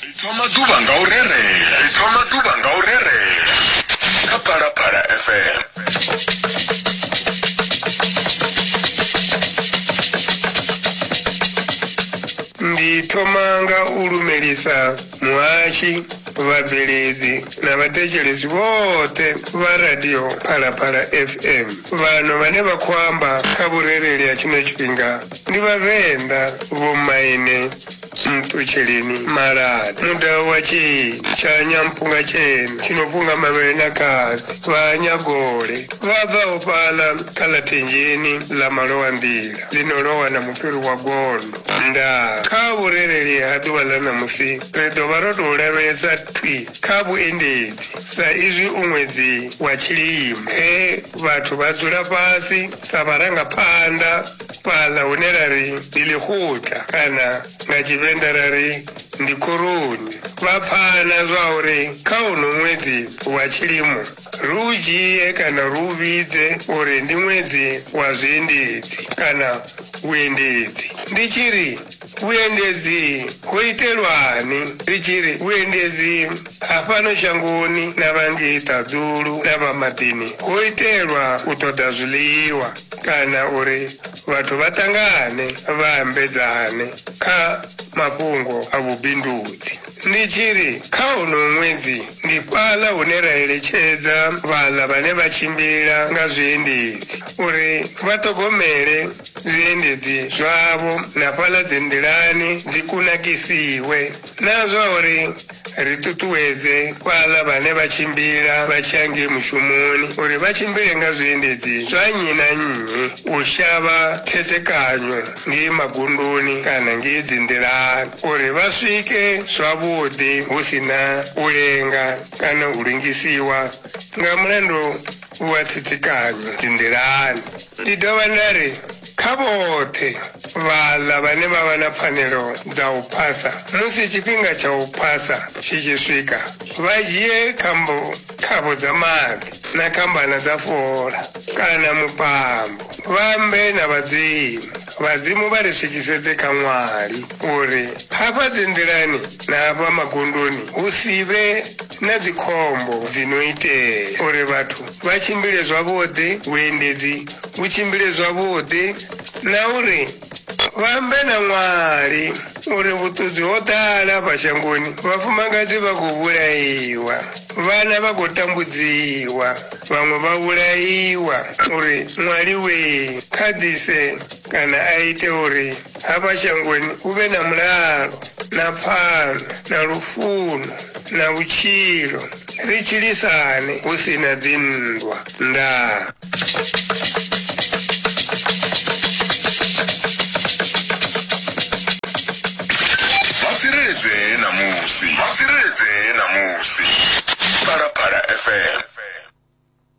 ri thoma ḓuvha nga u rerela ri thoma ḓuvha nga u rerela kha phalaphala fm ndi thoma nga u lumelisa muhashi vhabveledzi na vhathetshelesi vhoṱhe vha radio phalaphala fm vhano vhane vha khou amba kha vhurereli ha tshino tshifhinga Ndi Vhavenḓa vhomaine Nṱutsheleni maladi muḓa wa Tsheni tsha Nyampunga tshena tshi no funga mavhele na katsi vha Nyagole vha bvaho fhaḽa kha ḽa Thenjeni ḽa malowa nḓila ḽi no lowa na mufhiri wa gondo. Ndaa! Kha vhurereli ha ḓuvha ḽa ṋamusi ri ḓo vha ro tou lavhelesa thwi kha vhuendedzi sa izwi u ṅwedzi wa tshilimo he vhathu vha dzula fhasi sa vharangaphanḓa fhaḽa hune ra ri ndi ḽikhutla kana nga Tshivenḓa ra ri ndi khoroni vha pfana zwa uri kha uno ṅwedzi wa tshilimo ri u dzhie kana ri u vhidze uri ndi ṅwedzi wa zwiendedzi kana vhuendedzi ndi tshi ri Vhuendedzi ho itelwani? Ri tshi ri vhuendedzi ha fhano shangoni na vha ngei ṱaḓulu na vha maḓini ho itelwa u ṱoḓa zwiḽiwa kana uri vhathu vha ṱangane vha ambedzane kha mafhungo a vhubindudzi. Ndi tshi ri kha honoyu ṅwedzi ndi fhaḽa hune ra eletshedza vhaḽa vhane vha tshimbila nga zwiendedzi uri vha ṱhogomele zwiendedzi zwavho na fhaḽa dzinḓilani dzi kunakisiwe na zwa uri ri ṱuṱuwedze fhaḽa vhane vha tshimbila vha tshi ya ngei mushumoni uri vha tshimbile nga zwiendedzi zwa nnyi na nnyi u shavha khethekanyo ngei magunduni kana ngei dzinḓilani uri vha swike zwavhuḓi hu si na u lenga kana u lengisiwa nga mulandu u vha tsitsikanya dzinḓilani. Ndi dovha nda ri, Kha vhoṱhe vhaḽa vhane vha vha na pfanelo dza u phasa, musi tshifhinga tsha u phasa tshi tshi swika, vha dzhie khambo, khavho dza maḓi na khambana dza fola, kana mupambo, vha ambe na vhadzimu, vhadzimu vha ri swikisedze kha ṅwali, uri hafha dzinḓilani na hafha magondoni hu si vhe na dzikhombo dzi no itea, uri vhathu vha tshimbile zwavhuḓi, vhuendedzi vhu tshimbile zwavhuḓi na uri vha ambe na ṅwali uri vhuṱudzi ho ḓala fha shangoni, vhafumakadzi vha khou vhulaiwa, vhana vha khou tambudziwa, vhaṅwe vha vhulaiwa, uri ṅwali wee kha ḓise kana a ite uri hafha shangoni hu vhe na mulalo. na pfano na lufuno na vhutshilo ri tshilisane hu si na dzinndwa ndaa vha tsireledzee ṋamusi vha tsireledzee ṋamusi phalaphala fm